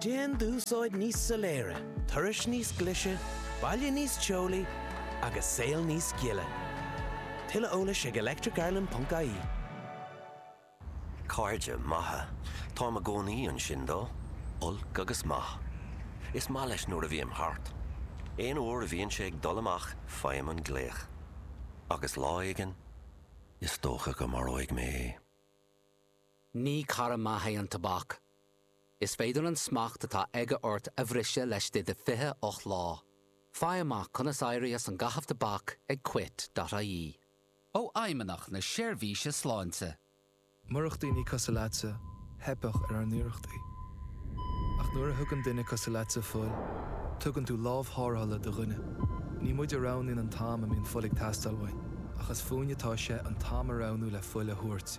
Déan d'úsáid níos soiléire, turais níos glaise, baile níos teolaí agus saol níos gile. Tuilleadh eolais ag electricireland.ie. Cairde maithe. Táim i gcónaí ansin dó, olc agus maith. Is maith leis nuair a bhím thart. Aon uair a bhíonn sé ag dul amach faighim an glaoch. Agus lá éigin, is dócha go maróidh mé é. Ní cara maith é an tobac. Is féidir an smacht atá aige ort a bhriseadh laistigh de 28 lá. Faigh amach conas éirí as an gcaitheamh tobac ag Quit.ie. Ó Fheidhmeannach na Seirbhíse Sláinte. Murach daoine cosúil leatsa, theipfeadh ar ár n-iarrachtaí. Ach nuair a thugann duine cosúil leatsa fuil, tugann tú lámh tharrthála do dhuine. Ní muid a roghnaíonn an t-am a mbíonn fuil ag teastáil uainn, ach is fúinn atá sé an t-am a roghnú le fuil a thabhairt.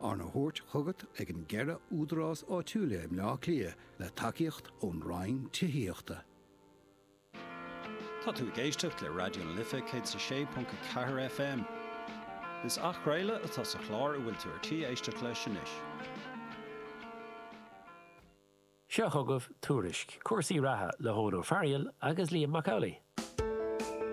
Arna thabhairt chugat ag an gceithre údarás áitiúla i mBleá Cliath le tacaíocht ón Roinn Tithíochta. Tá tú ag éisteacht le Raidió na Life 106.4 FM. Is athchraoladh atá sa chlár a bhfuil tú ar tí éisteacht leis anois. Seo chugaibh Tuairisc, cúrsaí reatha le hEoghan Ó Fearghail agus Liam Mac Amhlaigh.